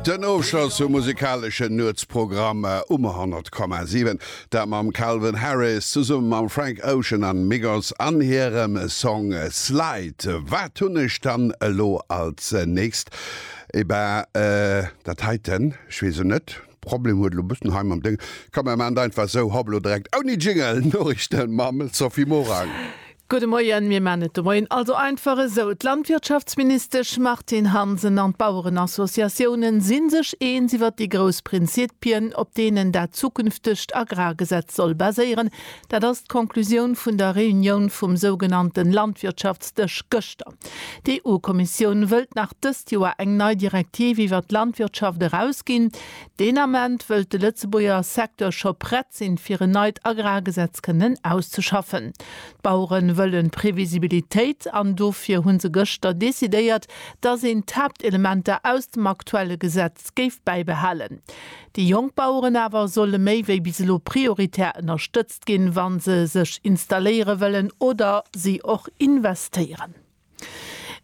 Den Ofschloss vum musikaleschen Nuetsprogramm um 100,7, dat mam Calvin Harris zesumme mam Frank Ocean an Migos an hirem Song Slide. Wat hunn ech dann elo als nächst? Et ben dat heiten, ech weess o net, Problem huet elo e bëssen hei mam Dëng. Komm mir maan et einfach esou, hoppelo, direkt ouni Jingle, Noriichten mam Sophie Morang. Gudde Moien, mir man et de Moien also einfach esou, D'Landwirtschaftsministesch Martine Hansen an d'Bauerenassociatiounen si sech eens iwwert déi grouss Prinzipien, op deenen dat zukünftegt Agrargesetz soll baséieren. Dat ass d'Conclusioun vun der Reunioun vum sougenannte Landwirtschaftsdësch gëschter. D'EU-Kommissioun wëllt nach dëst Joer eng nei Direktiv iwwert d'Landwirtschaft erausginn, Deen Ament wëllt de Lëtzebuerger Secteur scho prett sinn, fir en neit Agrargesetz kënnen auszeschaffen. D'Bauere wëllen Previsibilitéit an dofir hu se gëschter decidéiert, datt een d'Haaptelementer aus dem aktuelle Gesetz géif bäibehalen. Déi jonk Baueren awer solle méi wéi bis elo prioritär ënnerstëtzt ginn, wa se sech installéiere wëllen oder si och investéieren.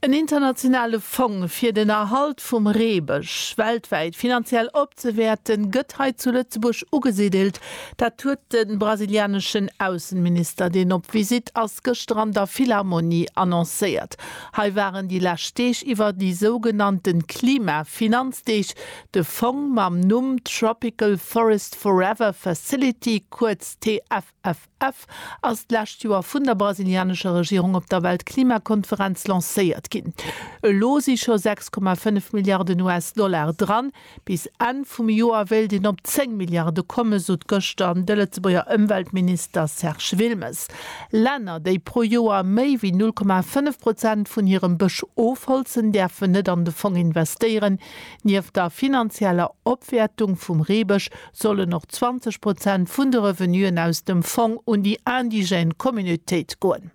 En internationale Fong fir den Erhalt vum Reebësch weltwäit finanziell opzewäerten, gëtt hei zu Lëtzebuerg ugesiddelt. Dat huet de brasilianeschen Aussenminister, deen op Visitt ass, gëschter an der Philharmonie annoncéiert. Hei waren déi lescht Deeg iwwer déi sougenannte Klima-Finanzdeeg. De Fong mam Numm Tropical Forest Forever Facility, kuerz TFF. FF, ass d'lescht Joer vun der brasilianescher Regierung op der Weltklimakonferenz lancéiert ginn. Elo si scho 6,5 Milliarden US-Dollar dran. Bis Enn vum Joer wéilt een op 10 Milliarde kommen, sot gëschter de Lëtzebuerger Ëmweltminister Serge Wilmes. Länner, déi pro Joer méi wéi 0,5 Prozent vun hirem Bësch ofholzen, däerfen net an de Fong investéieren. Nieft der finanzieller Opwäertung vum Reebësch sollen och 20 Prozent vun de Revenuen aus dem Fong un déi indigène Communautéit goen.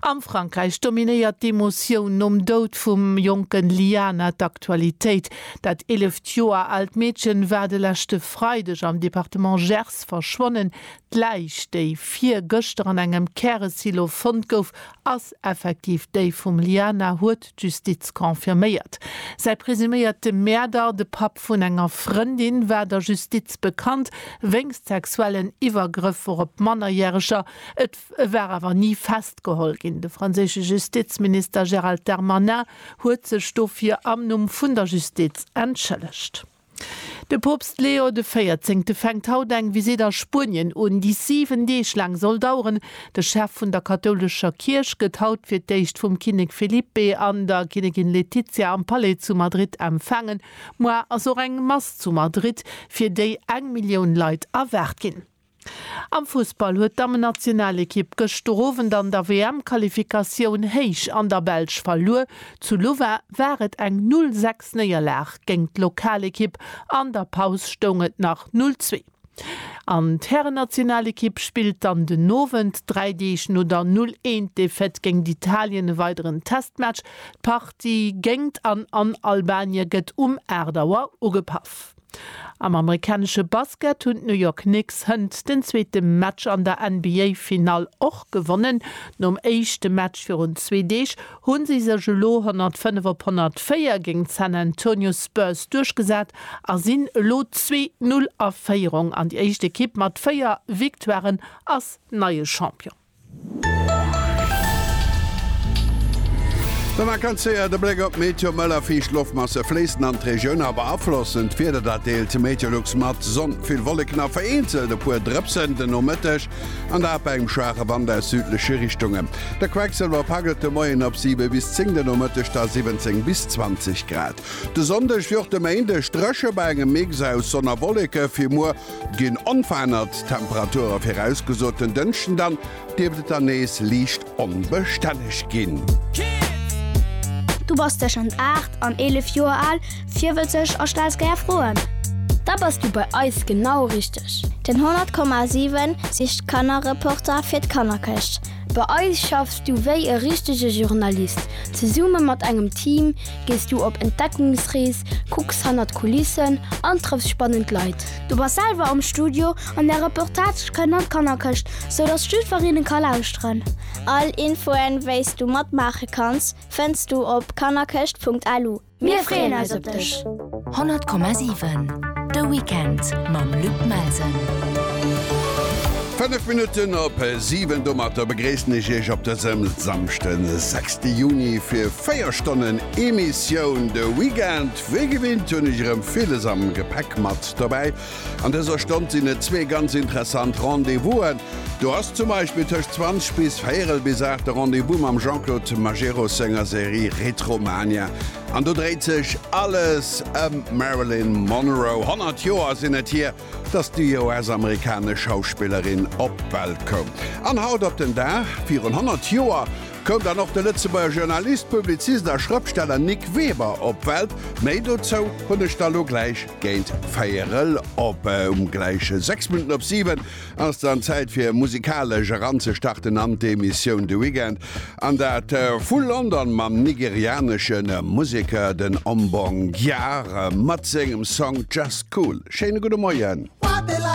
Am Frankräich dominéiert d'Emotioun nom Doud vum jonken Liana d'Aktualitéit. Dat eeleft Joer aalt Meedchen war de leschte Freideg am Departement Gers verschwonnen. D'Läich, déi virgëschter an engem Käresilo fonnt gouf, Ass effektiv déi vum Liana, huet d'Justiz confirméiert. Säi presuméierte Mäerder, de Papp vun enger Frëndin, war der Justiz bekannt wéinst sexuellen Iwwergrëffer op Mannerjäreger. Et war awer ni festgeholl ginn. De franséische Justizminister Gérald Darmanin huet sech dofir am Numm vun der Justiz entschëllegt. De Poopst Leo de Véierzéngte fänkt haut eng Visitt a Spuenien un, déi 7 Deeg laang soll daueren. De Chef vun der kathoulescher Kierch gëtt haut fir d'éischt vum Kinnek Felipe an der Kinnegin Letizia am Palais zu Madrid empfaangen. Muar ass och eng Mass zu Madrid, fir déi eng Millioun Leit erwaart ginn. Am Fussball huet d'Dammennationalekipp gëschter Owend an der WM-Qualifikatioun héich an der Belsch verluer. Zu Louvain war et eng 0 sechs Néierlag géint d'Lokalekipp, an der Paus stoung et nach 0 zwee. An d'Härennationalekipp spillt dann den Owend, dräi Deeg no der 0 een Defaite géint Italien, e weideren Testmatch. D'Partie géingt an an Albanien gëtt um 8 Auer ugepaff. Am amerikanesche Basket hunn d'New York Knicks hënt den zweete Match an der NBA-Finall och gewonnen. Nom éischte Match virun zwee Deeg hu si sech elo 105 op 104 géint d'San Antonio Spurs duerchgesat a sinn elo zwee Null a Féierung an déi éischt Ekipp mat véier Victoiren ass neie Champion. De Vakanzéier huet e Bléck op d'Meteo, Mëll a fiicht Loftmasse fléissen an d'Regioun a beaflossen d'Wieder, dat deelt Meteolux mat. Sonn, vill Wolleken a vereenzelt e puer Drëpsen den Nomëtteg an dat bei engem schwaache Wand aus südleche Richtungen. De Quecksëlwer paggelt de Moien op 7 bis 10, den Nomëtteg da 17 bis 20 Grad. De Sonndeg wéi och de Méindeg dréche bei engem Mix aus Sonn a Wolleke, fir muer Ginn onverännert Temperature virausgesot. Den Dënschden dann dierft et dann nees liicht onbestänneg ginn. Du bass tëschent 8 an 11 Joer al, virwëtzeg a stells gär Froen? Da bass du bei eis genau richteg! Den 100,7 sicht Kannerreporter fir d'Kannerkëscht. Bei eis schaffs du wéi e richtege Journalist, zesumme mat engem Team, gees du op Entdeckungsrees, kucks hannert d'Kulissen an trëffs spannend Leit. Du bass selwer am Studio an är Reportage kënnt an d'Kannerkëscht, sou datt jiddwereen ka lauschteren. All Infoen, wéi s du matmaache kanns, fënns du op kannerkëscht.lu. Mir freeën eis op dech! 100,7 De Weekend mam Luc Melsen. 5 Minutten op 7 Domatter begréissen ech Iech op dësem Samschden 6. Juni fir 4 Stonnen Emissioun de Weekend. Wéi gewinnt hunn ech erëm villes am Gepäck mat dobäi. An dëser Stonn sinn et zwee ganz interessant Rendez-vous'en. Do ass zum Beispill tëscht 20 bis véierel bis 8 de Rendez-vous mam Jean-Claude Majerus senger Serie Retromania. An do dréit sech alles ëm d'Marilyn Monroe. 100 Joer sinn et hier, dass déi US-amerikanesch Schauspillerin op d'Welt koum. An haut op den Dag virun 100 Joer koum dann och de Lëtzebuerger Journalist, Publizist a Schrëpfsteller Nic Weber op d'Welt. Méi dozou hunn ech da lo gläich géint véierel op. Um gläiche 6 Minutten op 7 ass dann d'Zäit fir musikalesch eranzestarten an d'Emissioun De Weekend, an dat vu London mam nigerianesche Museker den Ombong Gyar mat sengem Song Just Cool. Schéine gudde Moien.